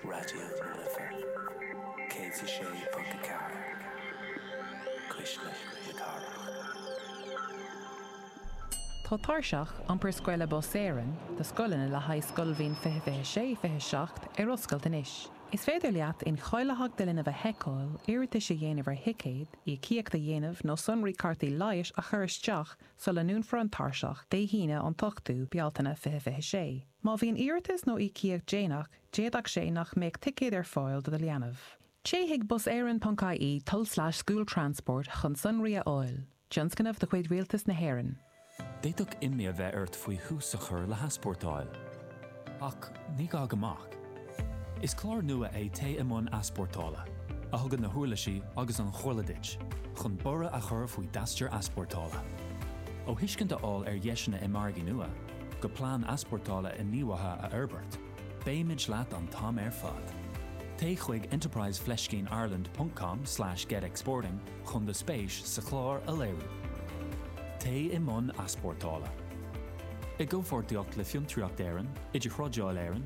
Raidió na Life 106.4, Cuisle na Cathrach. Tá Tairseach Iompair Scoile Bus Éireann do scoileanna le haghaidh scoilbhliain 20 26 27 ar oscailt anois. Is féidir leat incháilitheacht do linbh a sheiceáil, iarratais a dhéanamh ar thicéid, íocaíocht a dhéanamh nó sonraí cártaí leighis a chur isteach sula ndúnfar an tairseach, Dé hAoine, an 8ú Bealtaine 2026. Má bhíonn iarratas nó íocaíocht déanach, d'fhéadfadh sé nach mbeadh ticéad ar fáil do do leanbh. Téigh chuig buseireann.ie tul-slash-school-transport chun sonraí a fháil. Tionscnamh de chuid Rialtas na hÉireann. D'fhéadfadh imní a bheith ort faoi thús a chur le heaspórtáil. Ach ní gá go mbeadh. Is clár nua é Téigh i mBun Easpórtála, a thugann na huirlisí agus an chomhairle duit chun borradh a chur faoi d'aistear easpórtála. Ó thuiscint a fháil ar dheiseanna i margaí nua, go plean easpórtála inníomhaithe a fhorbairt, beimid leat an t-am ar fad. Téigh chuig enterprise fleiscín ireland.com slash getexporting chun do spéis sa chlár a léiriú. Téigh i mBun Easpórtála. I gcomhpháirtíocht le Fiontraíocht Éireann, Idirthrádáil Éireann,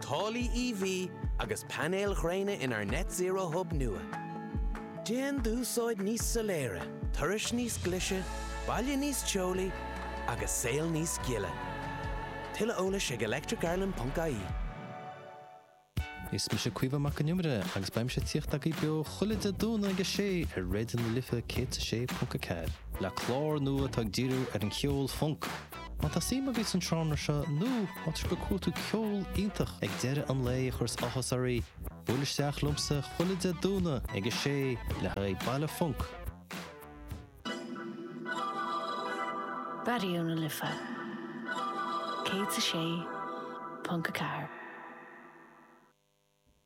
táillí EV agus painéil ghréine inár Net Zero Hub nua. Déan d'úsáid níos soiléire, turais níos glise, baile níos teolaí agus saol níos gile. Tuilleadh eolais ag electricireland.ie. Is mise Caoimhe Mac an Iomaire agus beidh mise ag tíocht agaibh beo chuile Dé Domhnaigh ag a sé ar Raidió na Life 106.4 le clár nua atá ag díriú ar an cheol func, Má tá suim agaibh san seánra seo nó má tá sibh ag cuartú ceol iontach ag deireadh an lae a chuireas áthas oraí, buail isteach liomsa chuile Dé Domhnaigh ag a sé le haghaidh Baile Func. Raidió na Life 106.4.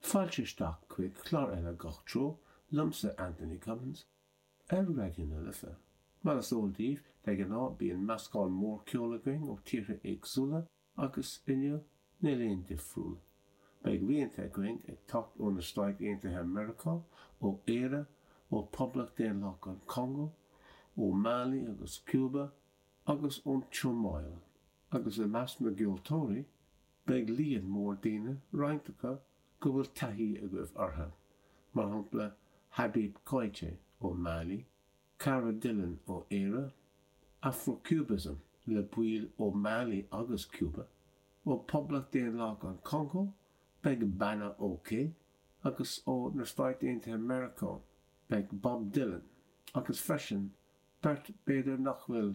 Fáilte isteach chuig clár eile Gach Treo, liomsa Anthony Cummins. Ar Raidió na Life, mar is eol daoibh, de ghnáth bíonn meascán mór ceoil againn ó tíortha éagsúla agus, inniu, níl aon difriúil. Beidh rianta againn ag teacht ó na Stáit Aontaithe Meiriceá, ó Éire, ó Phoblacht Daonlathach an Chongó, ó Mali agus Cúba, agus ón tSomáil. Agus i measc na gceoltóirí, Beidh líon mór daoine roinnt acu go bhfuil taithí agaibh orthu, mar shampla Habib Koité ó Mali, Cara Dillon ó Éire, Afrocubism le baill ó Mali agus Cuba, ó Poblacht Daonlathach an Chongó beidh Bana OK agus ó na Stáit Aontaithe Meiriceá beidh Bob Dylan agus freisin beirt b'fhéidir nach bhfuil